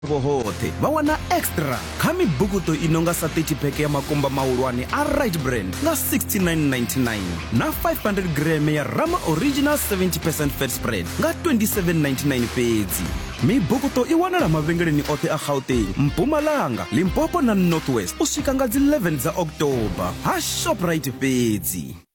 Vho hoṱhe vha wana extra kha mibukuṱo i no nga sa 30 peke ya makumba mahulwane a right brand nga 69.99 na 500 greme ya rama original 70 percent fat spread nga 27.99 fhedzi mibukuṱo i wanala mavhengeleni oṱhe a gauteng mpumalanga limpopo na northwest u swika nga dzi 11 dza october ha shoprite fhedzi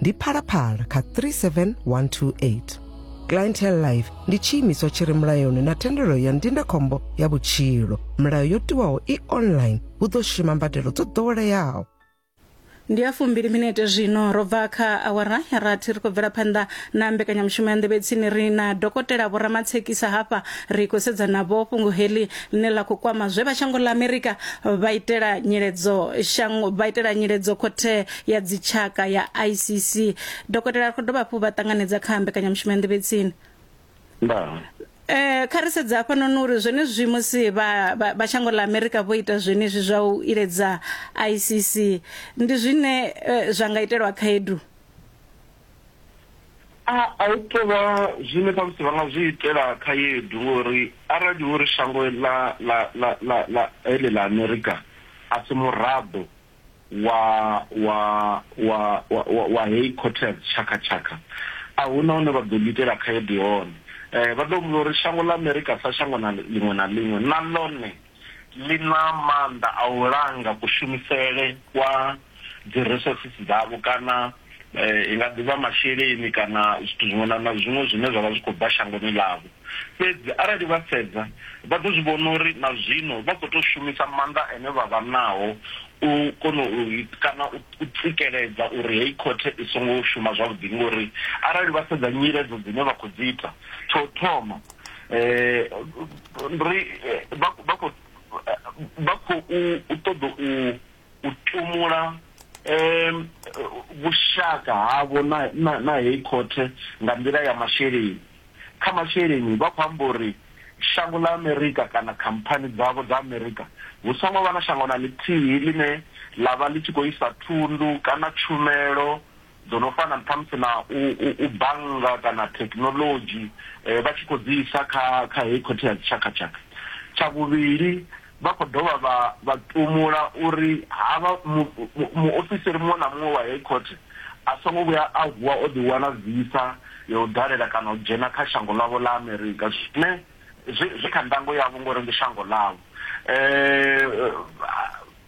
ndi phalaphala kha 37128 clientele life ndi tshiimiswa tshi re mulayoni na thendelo ya ndindakhombo ya vhutshilo milayo yo tiwaho i online hu ḓo shuma mbadelo dzo ḓoweleaho ndi ya fumbili minete zwino ro bva kha awara ya rathi ri khou bvela phanḓa na mbekanyamushumo ya nḓevhetsini ri na dokotela vhoramatshekisa hafha ri khou sedza navho fhungo heḽi ḽine ḽa khou kwama zwe vha shango ḽa amerika vha itela nyiledzo shango vha itela nyiledzo khothe ya dzitshaka ya icc dokotela ri khou dovha hafhu vha ṱanganedza kha mbekanyamushumo ya nḓivhetsini ndaa Eh kha ri sedza hafha noni uri zwenezwi musi vha vha shango ḽa America vho ita zwenezwi zwa u iledza ICC ndi zwine eh, zwa nga itelwa khaedu a a u tovha zwine khamusi vha nga zwi itela khaedu ngori arali uri shango ḽa ḽa ḽa ḽa ḽa ele ḽa amerika a si muraḓo wa wa wa wa wa, wa hei Cortez tshakhatshakha a hu na hune vha ḓo ḽi itela khaedu hone eh, vha ḓo humbula uri shango ḽa Amerika sa shango na ḽiṅwe na ḽiṅwe na ḽone ḽi na maanḓa a u langa kushumisele kwa dzi resources dzavho kana i nga ḓivha masheleni kana zwithu zwiṅwe na na zwiṅwe zwine zwa vha zwi khou bva shangoni ḽavho. Fhedzi arali vha sedza, vha ḓo zwi vhona uri na zwino vha khou tou shumisa maanḓa ane vha vha nao u kona u kana u tsikeledza uri heyi khothe i songo shuma zwavhuḓi. Ngori arali vha sedza nyiledzo dzine vha khou dzi ita, tsha u thoma ri vha vha khou vha khou ṱoḓa u. u tumula vhushaka havho na heyi khothe nga nḓila ya masheleni. Kha masheleni, vha khou amba uri shango ḽa Amerika kana khamphani dzavho dza Amerika hu songo vha na shango na ḽithihi ḽine ḽa vha ḽi tshi khou isa thundu kana tshumelo dzo no fana ṱhamusi na u, u, u bannga kana thekhinolodzhi eh, vha tshi khou dzi isa kha kha heyi khothe ya dzitshakatshaka tsha vhuvhili vha khou dovha vha vha tumula uri havha muofisiri mu, mu muṅwe na muṅwe wa heyi khothe a songo vhuya a vuwa o ḓiwana visa ya u dalela kana u dzhena kha shango ḽavho ḽa amerika zwine zwi kha ndango yavho ngori ndi shango ḽavho um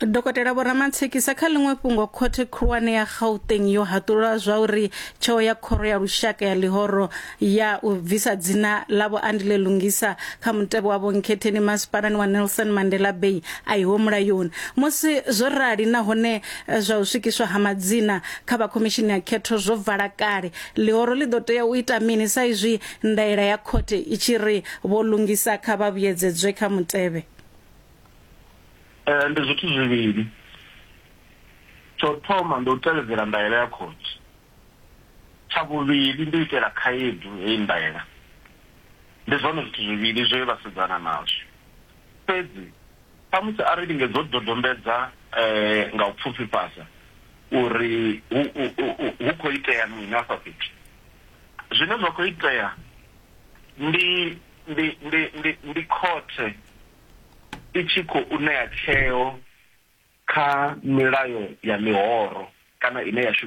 Dokotela Vho Ramatshekisa kha ḽiṅwe fhungo khothe khulwane ya Gauteng yo haṱulula zwa uri tsheo ya khoro ya lushaka ya ḽihoro ya u bvisa dzina ḽa Vho Andile Lungisa kha mutevhe wa vhonkhetheni masipalani wa Nelson Mandela Bay a iho mulayoni musi zwo rali nahone eh, zwa u swikiswa ha madzina kha vha khomishini ya khetho zwo vala kale ḽihoro ḽi ḓo tea u ita mini sa izwi ndaela ya khothe i tshi ri vho Lungisa kha vha vhuyedzedzwe kha mutevhe Eh, ndi zwithu zwivhili tsho thoma ndi u tevhedzela ndaela ya khotsi tsha vhuvhili ndi u itela khaedu heyi ndaela ndi zwone zwithu zwivhili zwe vha sedzana nazwo fhedzi samusi a ri lingedza u dodombedza um nga u pfufhifhadza uri hu khou itea mini afha fhethu zwine zwa khou itea ndi ndi ndi ndi ndi khothe i tshi khou ṋea tsheo kha milayo ya mihoro kana ine ya shumiswa.